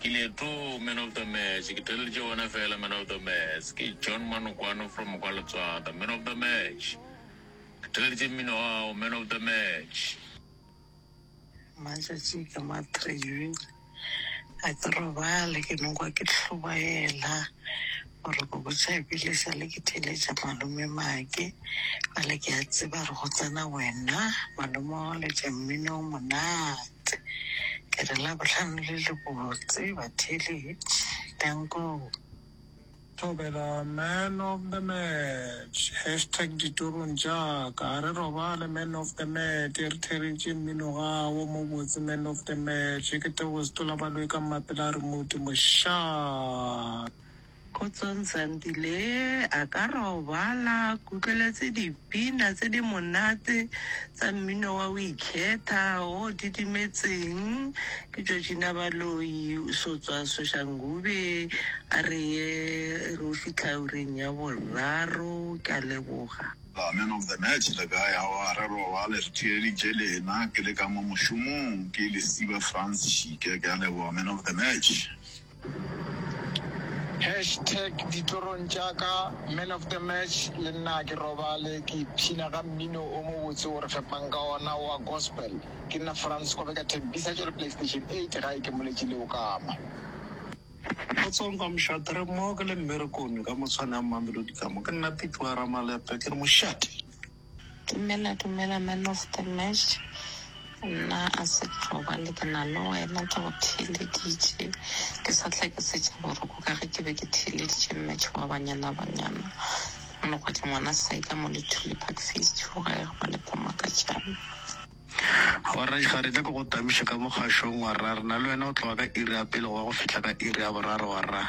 Ke le too man of the match ke theleditše wena fela man of the mats ke John Manokwano from kwa Letswada man of the match ke theleditše mmino wa gago man of the match. Matšatši ke ma three ga ke robale ke no kwa ke hlobaela. Gore go botša ebile sa le ke theeletša malome Maki bjale ke a tseba re go tsena wena malome wa go letša mmino o monate ke re labohlano le le botse batheeletši dankoo. Thobela man of the match hashtag ditorong tša ka a re robale man of the match e re theeletše mmino gago mo botse man of the match ke tebogo setola baloyi ka mmapela a re modumo shaa. Kgotsong Sandile, a ka robala ke utlweletse dipina tse di monate tsa mmino wa o ikhetha o didimetseng ke Georgina Baloyi o so tswa Soshangube a re ye re o fitlha ureng ya boraro ke a leboga. Ba man of the match le kae aowa a re robale re theeditše lena ke le ka mo mošomong ke lesiba Frans Šike ke a leboga man of the match. Hash tag ditlorong tša ka Man of the Match Le nna ke robale ke ipshina ka mmino o mobotse o re fepang ka ona wa gospel Ke nna Frans Kobe ka Thembisa Tšo re Playstation 8 gae ke moletše le okama. Kgotsong ka mošate re mmogo ke le mmerekong ka motshwane a Mamelodi ka mo Ke nna Pipi wa Ramalepe ke re mošate. Dumela dumela man of the match nna a se ke robale ke na le wena ke go theeleditše ke sa tle ke setša boroko ka ge ke be ke theeleditše match wa banyana banyana mogwadi ngwana saika mo le thule park face two ga e robale pomakatšana. Gwarra, Ga re nyake go tamiša ka mo kgašong, warra. Rena le wena o tloga ka iri ya pele go ya go fihla ka iri ya boraro, warra.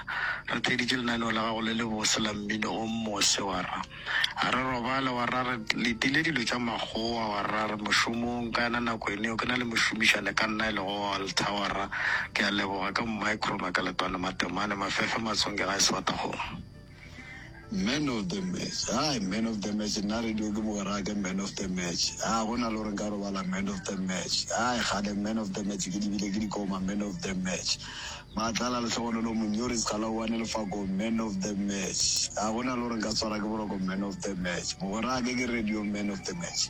Re theeditše lenaneo la gago le lebose la mmino o mose, warra. A re robale, warra. Re letile dilo tša makgowa, warra. Re mošomong ka yona nako eno yeo. Ke na le mošomišane ka nna e lego Walter, warra. Ke a leboga. Ke mmae Krumer ka letwane, matemane, mafefe matsonge gae sefatakgong. Man of the match, hai man of the match, nna radio ke mogwera ke man of the match, a go na le gore nka robala man of the match, hai kgale man of the match ke di bile ke di koma man of the match, maatlala lehlogonolo monyori sekgala oane lefako man of the match, a go na le gore nka tshwara ke boroko man of the match, mogwerake ke radio man of the match.